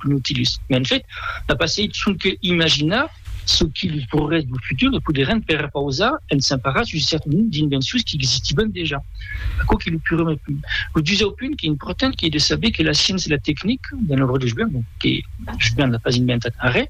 Lo Nautilus, en fait, a passeit sonque imaginar çò que los progrès dau futur poderàn perpausar en s'emparar sus un cèrte nombre d'invencions qu'existivan dejà. Aquò qu'es lo prumèr punt. Lo dusau punt qu'es important qu'es de saber que la sciéncia e la tecnica, d'un òrdre joven, que joven n'a pas inventat arrè,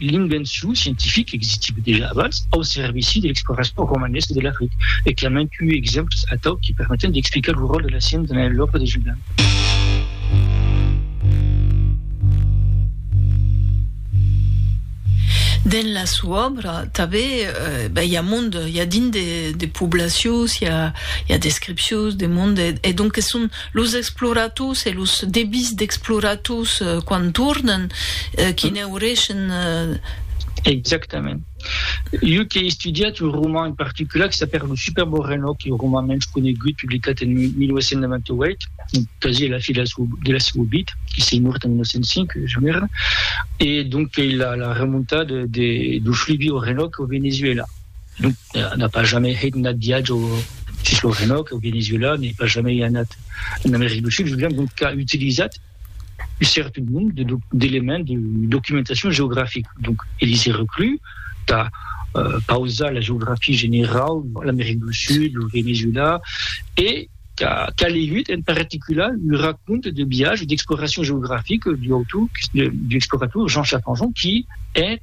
L'invencion scientifica existiva dejà abans au servici de l'exploracion romanesa de l'Africa e qu'i a mantui exemples atau que permeten d'explicar lo ròl de la sciença dins l'òbra de Julian. Dins la sua òbra tanben i a mond, i a dins de poblacions, i a descripcions de mond e donques son Los explorators e los debís d'explorators quan tornan, que n'aureishen. Exactament. Jo qu'è estudiat un roman en particular que s'apèla Lo superbo renò, qu'è lo roman mens conegut, publicat en 1898, un casièr de la fi de la seua vid, que s'ei mòrt en 1905, jo n'èra, e donc qu'ei la remontada de Fluvio Renò au Venezuela. Non, n'a pas jamais hèit nat viatge sus lo Renòc au Venezuela, n'ai pas jamais anat en America du Sud, Julian donc qu'a utilizat un cèrte nombre de d'éléments de documentacion geografica, donc e li se reclus tà pausar la geografia generau, l'America du Sud, lo Venezuela, e qu'a legut en particular un raconte de viatge d'exploracion geografica d'un autor, d'un explorator Jean Chaffanjon qui hèt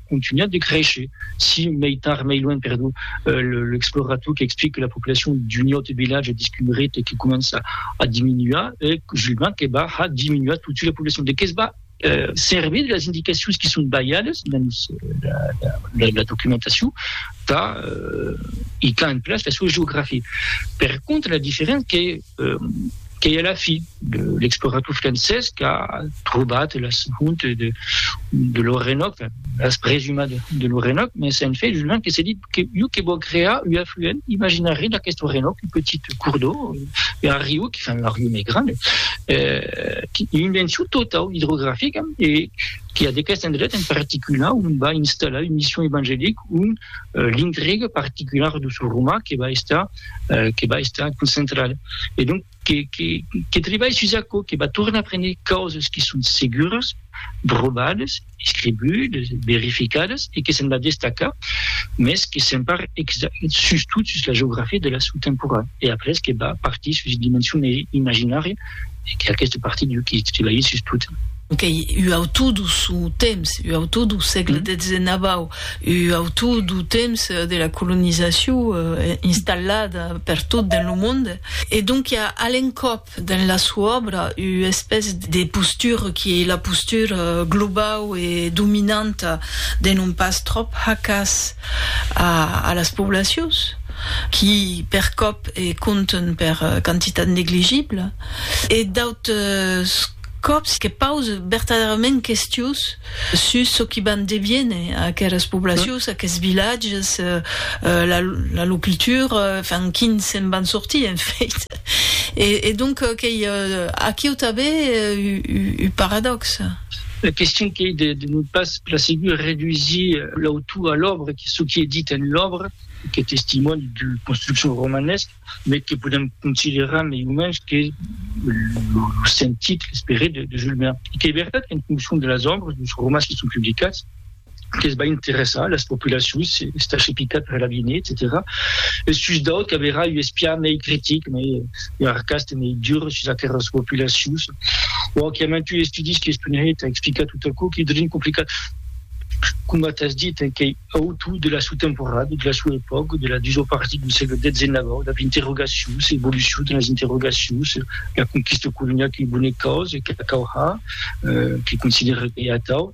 contunhat de créisher, si mei tard mei luènh, perdó, l'explorator qu'explique que la populacion d'un aute vilatge discumeret e que comença a diminuar, e Julbin que va ha diminuar totsuit la populacion. De que's va servir de las indicacions qui son balhadas dens la documentacion tà itar en place la soa geografia. Per contra, la diferéncia qu'ei qu'ei a la fi l'explorator francés qu'a trobat las hontes de de l'Orenòc, las presumas de l'Orenòc, mès en fait Julian que se dit que iu que vò crear ua afluent imaginari d'aquest Orenòc, un petit cours d'eau, un arriu, que fan l'arriu mei grand, qu'ei un invention totau idrografica e que a d'aquest endret en particular on va installar un mission evangelic, on l'intriga particular de ce roman que va estar euh, que va estar concentrat e donc que, que, que tribalh sus aquò, que va tornar a prendre causas que son seguras, provadas, escribudes, verificadas e que se'n va destacar, mes que se'n par sus tot sus la geografia de la sou temporal e après que va partir sus dimension imaginària e que aqueste partit jo qui titulaï sus tot. Qu'ei ua autor dau sò temps, ua autor dau sègle dezenabau, ua autor dau temps de la colonizacion installada per tot dens lo monde, e donc i a a l'encòp dens la sua òbra ua espèce de postura qui ei la postura globau e dominanta de non pas tròp hacas, a las poblacions qui per còp e compten per quantitat negligible e d'autres còps que pause vertadèrament questions sus çò qui van deviene aquelas poblacions, aqueths vilatges, la lor cultura, enfin quin se'n van sortir en fait. E donc qu'ei aquiu tanben un paradòxe. La question qu'ei de non pas la segur redusir l'autor a l'òbra, que çò qui es dit en l'òbra qu'es testimòni d'ua construccion romanesca, mai que podem considerar mai o mens que lo sentit, l'esperit de Jules Verne. E qu'ei vertat qu'en foncion de las òbras, dos romans qui son publicats, que's va interessar las populacions, estar chepicat per l'aviné, etcetèra Es sus d'autres qu'averà un espiar mei critic, mei arcast e mei dur sus aqueras populacions. Bon, qu'i a mantuns estudis qui estonhèt a explicar tot aquò qui devien complicat, coma t'as dit, en quei auto de la sua temporada, de la sua epòca, de la dusau partit dau sègle xix, dab interrogacions, evolucion de las interrogacions, la conquista coloniala quei bona causa, qu'a cau har, qui considèra quei atau.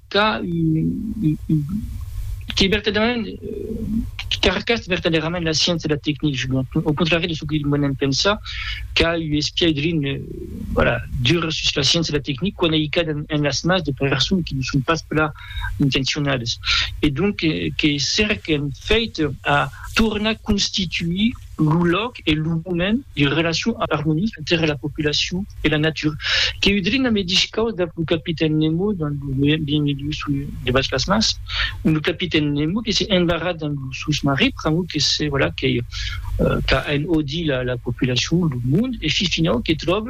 qu'a que vertadèrament qu'arcast vertadèrament la sciéncia e la tecnic au contrari de çò que monem pensa qu'a u espiai drin voilà dur sus la sciéncia e la tecnic quan ei cas en las mas de personnes qui ne son pas plan intencionades e donc que cerquen fèit a tornar constituir lo lòc e lo moment de relacion armonica entre la populacion e la natura, que udrin la medish caus dab lo capitèn Nemo dins lo Mil milius sous l'eau debas las mars, ont lo capitèn Nemo que se embarra dins lo sosmarin pr'amor que se, voilà, qu'ei, qu'a enhodit la populacion, lo monde, e fi finau que tròb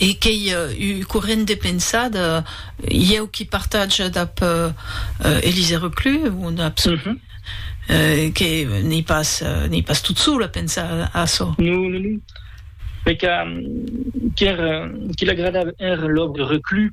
E qu'ei ua corrent de pensada, ieu qui partage dab Elise Reclus, un absolu, que n'ei pas, n'ei pas tot sol a pensar açò. Non, non, non. Mai que, qu'er, qui l'agradava èra l'òbra Reclus,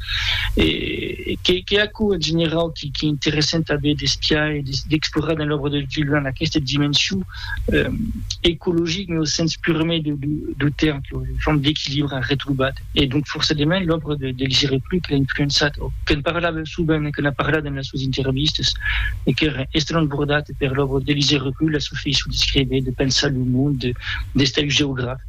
E qu'ei aquò, en generau, qu'ei interessant tanben d'espiar e d'explorar dins l'òbra de Julian, aquesta dimension ecologica, en lo sens pur e mai deu tèrme, que ei una forma d'equilibre arretrobat. E donc, forçadament, l'òbra del Jere Plus que l'a influençat, o que'n parlava sovent e que n'a parlat dins las suas intervistas, e qu'èra estrambordata per l'òbra del Jere Plus, la sua faiçon d'escréver, de pensar lo monde, d'estar un geograf.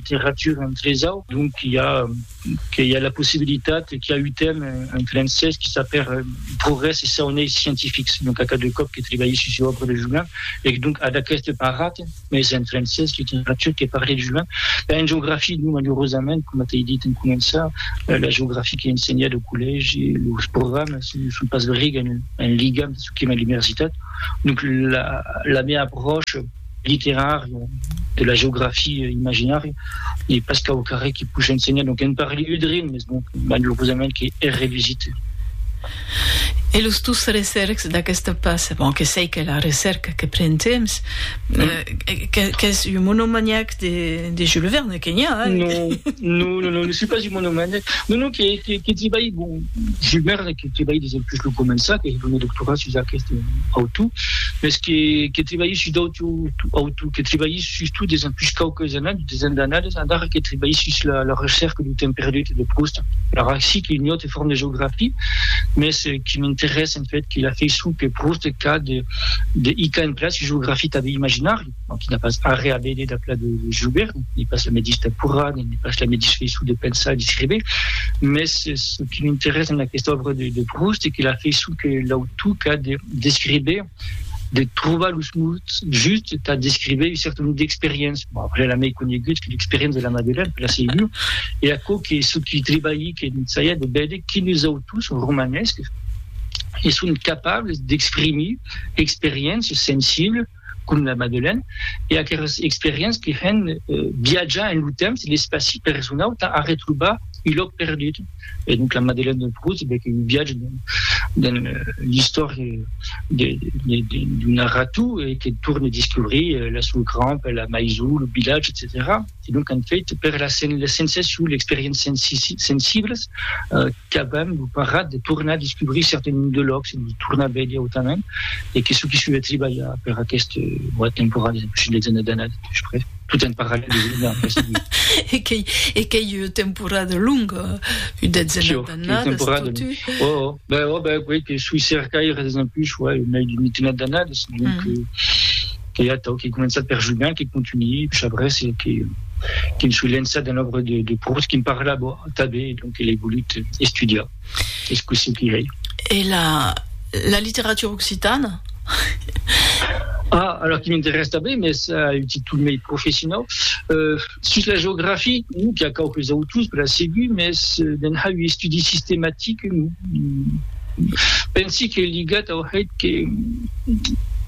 Litteratura en tresau, donc qu'i a que i a la possibilitat e qu'i a utm en francés que s'a per progrès e saunei scientifics, donc a cada còp que trebalhi sus ua òbra de Juin, ec donc ad aqueste parat, mès en francés, litteratura que parle de Juin, ben en geografia non, malurosament, coma t'ei dit en començar, la geografia qu'ei ensenhada au collègi, los programas non son pas briga en ligam de çò que m'ai a l'umersitat, donc la la mea apròcha, literària, de la geografia imaginària, e pas qu'au carrèr que push ensenhar, donc en parli un drin, mes bon, malurosament que hè revisite. E los tus recercs d'aquesta pas, bon, que sei qu'è la recerca que pren temps, qu'ès un monomaniac de, de Jules Verne, que n'i a, hein? Non, non, non, non, ne suis pas un monomaniac, non, non, que, que, que ti bai, bon, Jules Verne, que trebalhi des del que lo començar, qu'ei lo meu doctorat sus aqueste autor, mes que que trebalhi sus d'autres autors, que trebalhi sus tot des empuish quauques annadas, des annadas endarrèr que trebalhi sus la la recerca du temps perdut de Proust, alara aicí qu'ei un autre forme de geografia, mes que m'interessa en fait que la faiçon que Proust qu'a de de hicar en place ua geografia tanben imaginària. Bon, qui n'a pas arrè a véder d'a pla de joguer, n'ai pas la medish taporra, n'ai pas la medish feiçon de pensar e d'escréver, mès ce qui m'interesse en aquesta òbra de de Proust es que la feiçon que l'autor qu'a de d'escréver, de trobar los mots justes tà d'escréver un certain nombre d'experiénces, bon après la mei conegut que l'experiénce de la Madeleine, per la segur, e aquò que ce qui trebalhi que n'ensaia de véder quines autors romanèscs e son capables d'exprimir experiénces sensibles, com la Madeleine, e aqueras experiéncias que hèn viatjar en lo temps e l'espaci per resonau tà arretrobar un lòc perdut. E donc la Madeleine de Proust bec un viatge dins l'istòria d'un narrator que torne descobrir la sua crampa, la maison, lo vilatge, etcetèra. e donc an fait per la sensacion, l'experiéncia sensiblas qu'avèm lo parat de tornar descubrir cèrte nom de lòcs e los tornar veire autament e que çò qui soi a tribalhar per aqueste boat temporal es impossible de gener d'anada de pus près tot en parallèl de gener en pressa de e qu'ei ua temporada longa ua detzena d'annadas totu ben ben ben que soi cercaire des en pus uèi mai d'una mitena d'annadas donc que atau qu'ei començat per Julien, que contunhi Chabrès e que que'n soi lençat dens l'òbra de, de Proust, que'n parlava tanben e donc l'ei volut estudiar. Es cossí que ei. E la, la literatura occitana? Ah, alors que m'interès tanben, mès a un títol mei professionau. Euh. Sus la geografia, non qu'a quauques autors per a segur, mès de'n hai un estudi sistematic, pensi que ligat au hèt que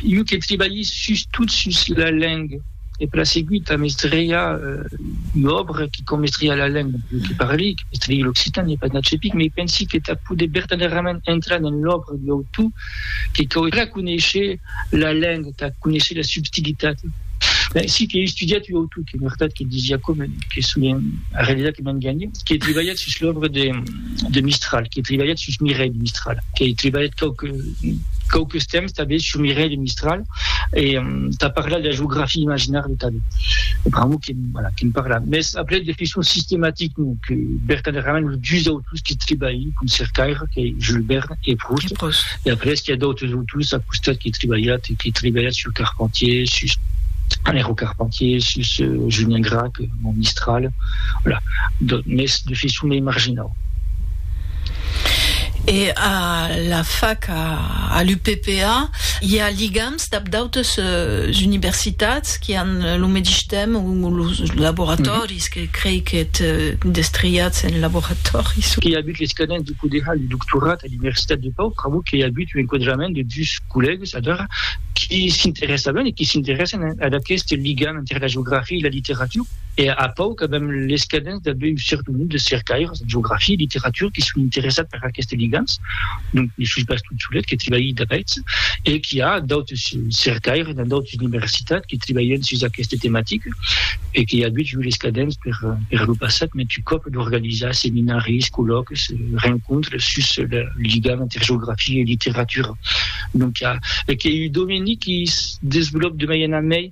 iu que tribalhi sus tot sus la lenga, e per a segur tà mestriá ua òbra qui com mestriá la lenga, iu que parli, que mestrií l'occitan, n'ai pas nat cepic, mès pensi que tà poder bertanèrament entrar dens l'òbra d'un autor, que cauerà conéisher la lenga, tà conéisher la subtilitat. Ben, si qu'ei estudiat ua autor que en vertat que disiá coma que solien arrelisar que m'enganhe, qu'ei tribalhat sus l'òbra de de Mistral, qu'ei tribalhat sus Mireille Mistral, qu'ei tribalhat quauque quauques temps tanben sur Mireille Mistral e tà parlar de la geografia imaginària tanben. Pr'amor que, voilà, que'n parla. Mès après de façon sistematic non, que vertadèrament los dus autors Pus que tribalhi com cercaire que Jules Verne e Proust. E pus. E après qu'i a d'autres autors a costat que tribalhat e que tribalhat sus Carpentier, sus Alejandro Carpentier, sus Julien Gracq, mon Mistral, voilà, mès de façon mei marginau. E a la fac, a l'UPPA, i a ligams dab d'autres universitats qui an lo medish temps o lo laboratòri. Vis que crei qu'èt destriatz en laboratòri sus. Qu'ei abut l'escadent de poder har lo doctorat a l'Universitat de Pau pr'amor qu'ei abut un enquadrament de dus collègues adara qui s'interessavan e qui s'interèssen ad aqueste ligam enter la geografia e la literatura. E a Pau qu'avèm l'escadent d'aver un cèrte nombre de cercaires en geografia e literatura qui son interessats per aquestes ligams, donc li sus bastun solet que tribalhi d'aguests e qui a d'autres cercaires dins d'autres universitats qui tribalhen sus aquesta tematica e que i a agut jo les cadents per per lo passat mès tu còp d'organizar seminaris, collòques, rencontres sus le ligam entre geografia e literatura, donc i a e que ei un domeni qui se desvolòp de mai en a mai.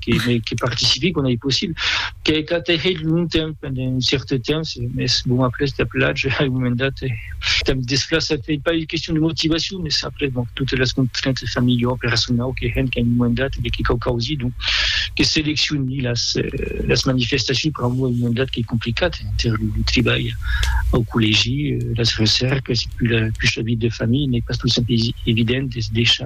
que participi quand ei possible. Qu'ei clar t'ei hèit longtemps, pendent un cèrte temps, mès bon, après t'ap lach a un moment dat e t'am desplaçat. Ei pas ua question de motivacion, mès après bon, totes las contraintes familiaus, personaus que hènt qu'a un moment dat e que cau causi donc que seleccioni las manifestacions. Per a moi, un moment dat qu'ei complicat enter lo tribalh au collègi, las recèrques e pus la vita de familha n'ei pas tot sempre evident de se deishar.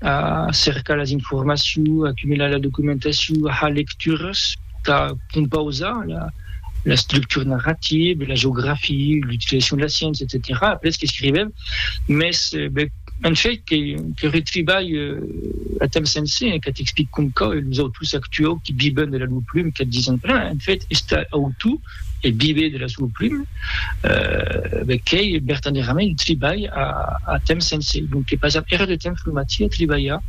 a cercar las informacions, a cumular la documentacion, a har lecturas, tà compausar la structura narrativa, la geografia, l'utilizacion de la sciéncia, etcetèra, après qu'escrivèm, mès en fait que retribalh a temps sencer, que t'explic com cau, e los autors actuaus qui viven de la lor pluma, que dison, en fait, estar autor, e viver de la sua pluma bec qu'ei vertadièrament un tribalh a temps sencer donc que passam era de temps lo matí a tribalhar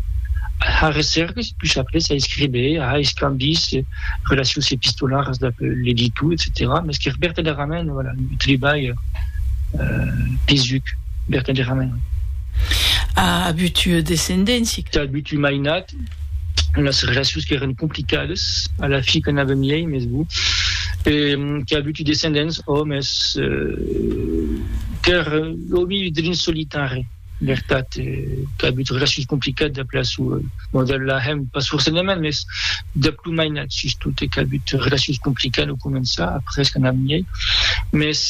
a har recèrques e pus après a escriver a har escambis relacions epistolaras dab l'editor etcetèra mès qu'es vertadièrament voilà un tribalh pesuc vertadièrament. A abutu descendéncia? Tà abutu mainat. las relacions qu'èran complicadas a la fi que n'avèm lei mes bon e qu'a avuti descendents ò mes qu'èr ò mi drin solitari vertat qu'a avut relacions complicadas dab la sua bon dab la hèm pas forcedament mes dab lo mainat sustot e qu'a avut relacions complicadas au començar après que n'avèm lei mes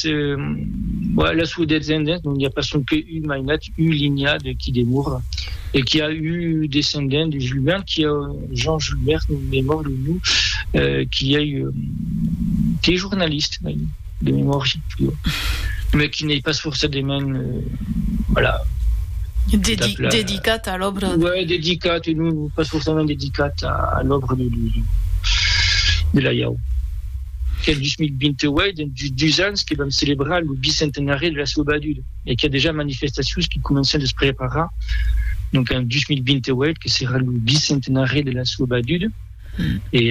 la sua descendents non i a pas sonque un mainat eu linha de qui demora e qui a eu descendent de Julbert qui a Jean Julbert me mor lo nu qui ei qui ei jornalist de memòria jo me qui n'ei pas forçadement voilà dedicat a l'òbra ouais dedicat e non pas forçament dedicat a l'òbra de de la iau qu'el 2028 dus ans que vam celebrar lo bicentenari de la seua baduda e qu'i a dejà manifestacions que comencen de's preparar, donc en 2028 que serà lo bicentenari de la soa baduda e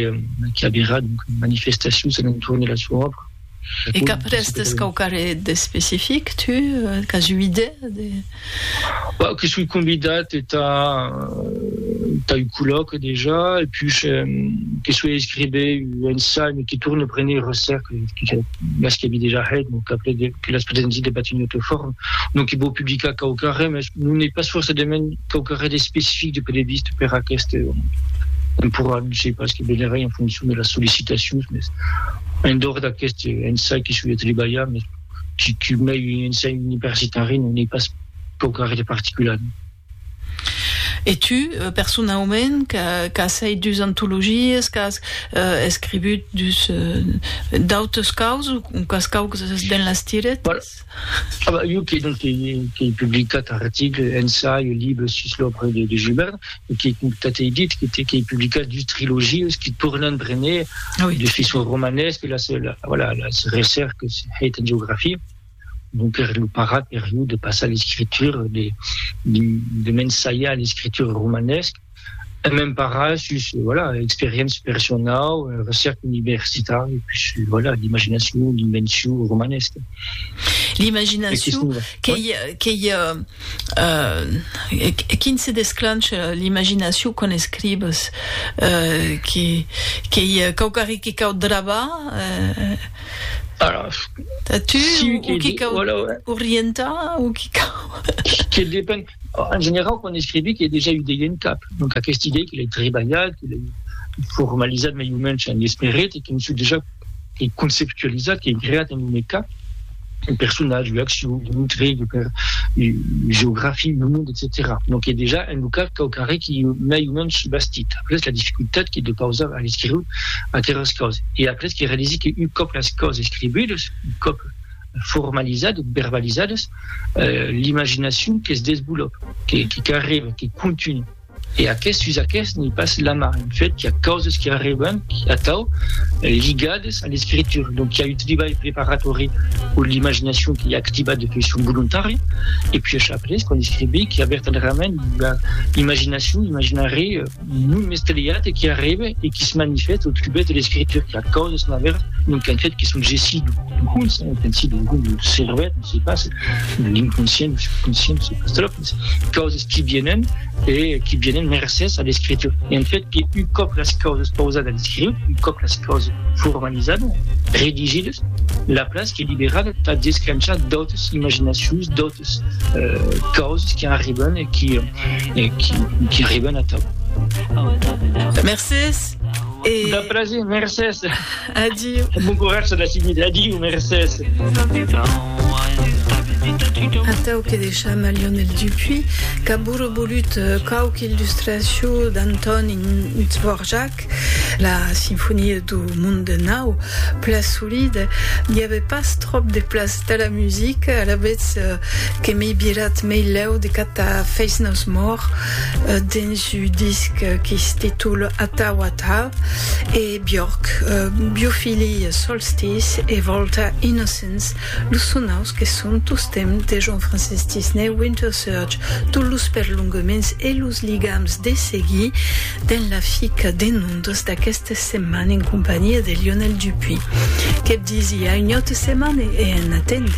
qu'i averà donc manifestacions a l'entorn de la soa òbra. E qu'après tens quauquarre d'especific, tu? Qu'as ua idèa de. Bah, que soi convidat entà entà un collòque dejà e pus que soi a escriver un ensai, me que torne a prene un recerca, mas que avi dejà hèt, donc après que las podètz dire de Batignolles Forum, non que vò publicar quauquarren, mès non ei pas forçadament quauquarren d'especific de poder vist per aqueste temporal, non sei pas, que venerai en foncion de las sollicitacions, mès en dehors d'aqueste ensai que soi a trebalhar, mès que mei un ensai universitari, non ei pas quauquarren de particular. E tu, personaument, qu'as hèit dus antologies, qu'as escrivut dus d'autes causes o qu'as causes dens las tiretas? Voilà. Jo qu'ei donc qu'ei publicat articles, ensaios, libres sus l'òbra de Joubert, e qu'ei, coma t'ei dit, qu'ei publicat dus trilogies qui tornan prene de façon romanesque las, voilà, las recèrques hèit en geografia. donc ère lo parat per jo de passar l'escritura, de de m'ensajar l'escritura romanesca, e m'emparar sus voilà experiéncia personau, recèrca universitària e pus voilà l'imaginacion, l'invencion romanesca. L'imaginacion, qu'ei qu'ei quin se desclancha l'imaginacion quan escribes? Qu'ei quauquarri que cau drabar? Alas. A tu o qui cau orientar o qui cau. Que depen. En generau, quan escrivi qu'ei dejà ua idei en cap. Donc aquesta idei que l'ei trebalhat, que l'ei formalizat mei o mensh en esperit e que m'sò dejà, qu'ei conceptualizat, qu'ei creat en lo meu cap. un personatge, ua accion, un intrèg, per ua geografia, un monde, etcetèra. Donc es dejà en lo cas quauquarren qui ei mai o mens subastit. Après la dificultat que deu pausar a l'escriure aqueras causes. E après que realisi que un còp las causes escribudes, un còp formalizades, verbalizades, l'imaginacion que's desvolòp, que carrega, que continua. E aqueth sus aqueth n'i passe la man, en fait, qu'i a causes qui arriban atau ligades a l'escritura, donc qu'i a un tribalh preparatori o l'imaginacion qui a activat de faiçon volontària, e puis ash après, quan escrivi, qu'i a vertadèrament ua imaginacion, un imaginari non mestelhat e qui arribe e qui se manifeste au trubèth de l'escritura, qu'i a causes naver, donc en fait, qui son gessí d'un conse, un pensi d'un conse, d'un cervèth, non se passe, de l'inconscient, du subconscient, non se passe, causes qui vienen e qui vienen mercés a l'escritura. E en fet que un còp las causes pausadas escriut, un còp las causes formalizadas, redigidas, la place qu'es liberada tà desclenchar d'autres imaginacions, d'autres causes qui arriban e qui qui arriban atau. Mercés e. De plaser, mercés. Adiu. Bon coratge la seguida. Adiu, mercés. Atau que deisham a Lionel Dupuy, qu'aburre bolut quauque illustracion d'Antoni Dvorak, la sinfonia du monde nau, pla solide, n'i ave pas tròp de plas tà la musica, alavetz que m'ei virat mei lèu de catar Face No More dens un disc qui se titule Atau Atau, e. Björk, Biofili, Solstice e Volta, Innocence, los sonaus que son tostemp de Jean-Francis Disney, Winter Surge, tot los perlonguments e los ligams de seguir dens la fica de nondas d'aqueste setman en companhia de Lionel Dupuy. Que'p disiá un autre setman e en atendre.